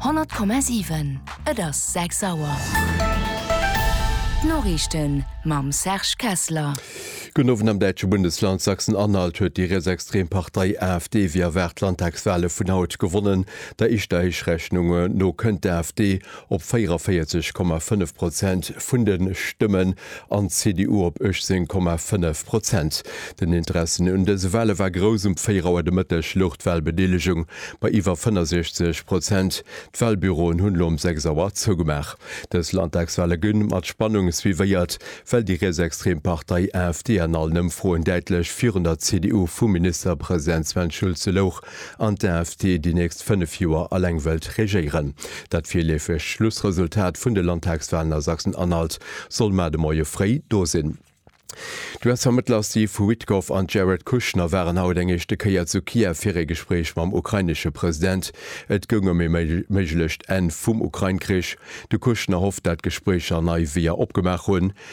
100,7 Et ass 6 Auer. D'Noriichten mam Serge Kessler. Gudden Owend. Am däitsche Bundesland Sachsen-Anhalt huet déi rietsextrem Partei AfD wéi erwaart d'Landtagswale vun haut gewonnen. Der éischter Héichrechhnunge no kënnt d'AfD op 44,5 Prozent vun de Stëmmen an d'CDU op 18,5 Prozent. Den Interessen un dëse Wale war grouss, um 4 Auer de Mëtteg louch d'Walbedeelegung bei iwwer 65 Prozent. D'Walbüroen hunn elo um 6 Auer zougemaach. Dës Landtagswale gënn mat Spannung suivéiert, well déi rietsextrem Partei AfD an allen Ëmfroen däitlech virun der CDU vum Ministerpresident Sven Schulze louch. an d'AFD déi nächst 5 Joer alleng wëllt regéieren. Dat virleefegt Schlussresultat vun de Landtagswalen a Sachsen-Anhalt soll mar de Moie fréi do sinn. D'US-Vermëttler Steve Witkoff an Jared Kushner waren haut eng éischte Kéier zu Kiew fir ee Gespréich mam ukrainesche President. Et goung ëm ee méiglecht Enn vum Ukrain-Krich. De Kushner hofft, dat d'Gespréicher nei Weeër opgemaach hunn,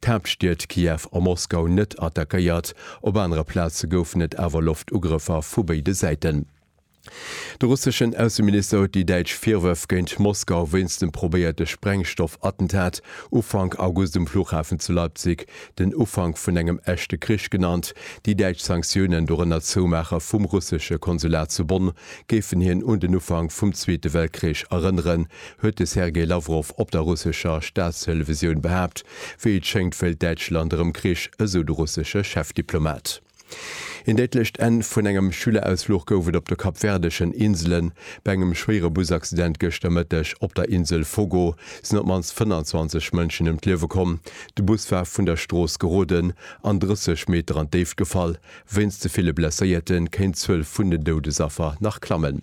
d'Haaptstied Kiew a Moskau net attackéiert, op anere Plaze goufen et awer Loftugrëffer vu béide Säiten. De russeschen Ausseminister huet déi däitsch Virwërf géint Moskau wéinst dem probéierte Sprengstoffattentat Ufank August um Fluchhafen zu Leipzig den Ufank vun engem echte Krich genannt. Déi däitsch Sanktiounen, dorënner d'Zoumaache vum russesche Konsulat zu Bonn, géifen hien un den Ufank vum Zweete Weltkrich erënneren, huet de Sergei Lawrow op der russescher Staatstelevisioun behaapt. Wéi et schéngt, wëllt Däitschland erëm Krich, esou de russesche Chefdiplomat. Een déidlecht Enn vun engem Schülerausfluch gouf et op de kapverdeschen Inselen. Bei engem schwéiere Busaccident gëschter Mëtteg op der Insel Fogo sinn op d'mannst 25 Mënschen ëm d'Liewe komm. De Bus war vun der Strooss geroden an 30 Meter an d'Déift gefall. Wéinst de ville Blesséierte kéint d'Zuel vun den Doudesaffer nach klammen.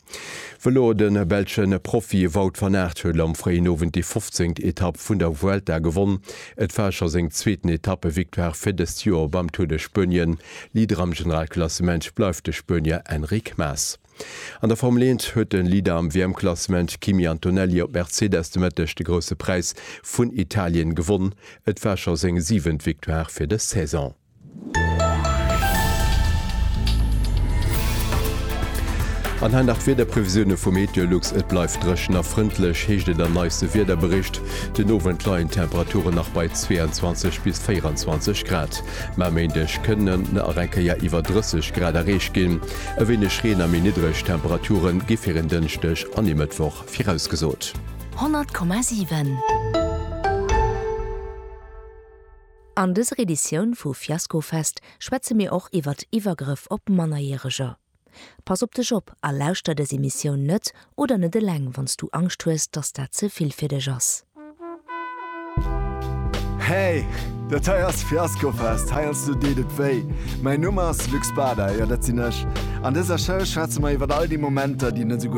Vëlo, De belsche Profi Wout van Aert huet am fréien Owend déi 15. Etapp vun der Vuelta gewonn. Et war scho seng zweeten Etappe-Victoire fir dëst Joer beim Tour de Spuenien. Leader am Generalklassement bleift de Spuenier Enric Mas. An der Formel Eent huet de Leader am WM-Klassement Kimi Antonelli op Mercedes de Mëtteg de Grousse Präis vun Italien gewonn. Et war scho seng siwent Victoire fir dës Saison. An hei nach d'Wiederprevisioune vu MeteoLux, Et bleift dréchen a frëndlech, heescht et am neiste Wiederbericht. Den Owend leien d'Temperature nach bei 22 bis 24 Grad, mä e Méindeg kënnen nach eng Kéier iwwer 30 Grad erreecht ginn. E wéineg Reen a méi niddreg Temperature gi fir en Dënschdeg an e Mëttwoch virausgesot. 100,7. An dëser Editioun vu Fiaskofest schwätze mir och iwwert Iwwergrëff op Mannerjäreger. Pass op dech op a lauschter dës Emissioun net oder net eleng wann s du Angscht hues, dass dat ze vill fir dech ass. Hey! Dat hei ass Fiaskofest, heiansdo deet et wéi. Mäin Numm ass Luc Spada, jo dat sinn ech. An dëser Show schwätze mer iwwert all déi Momenter, déi net esou gutt.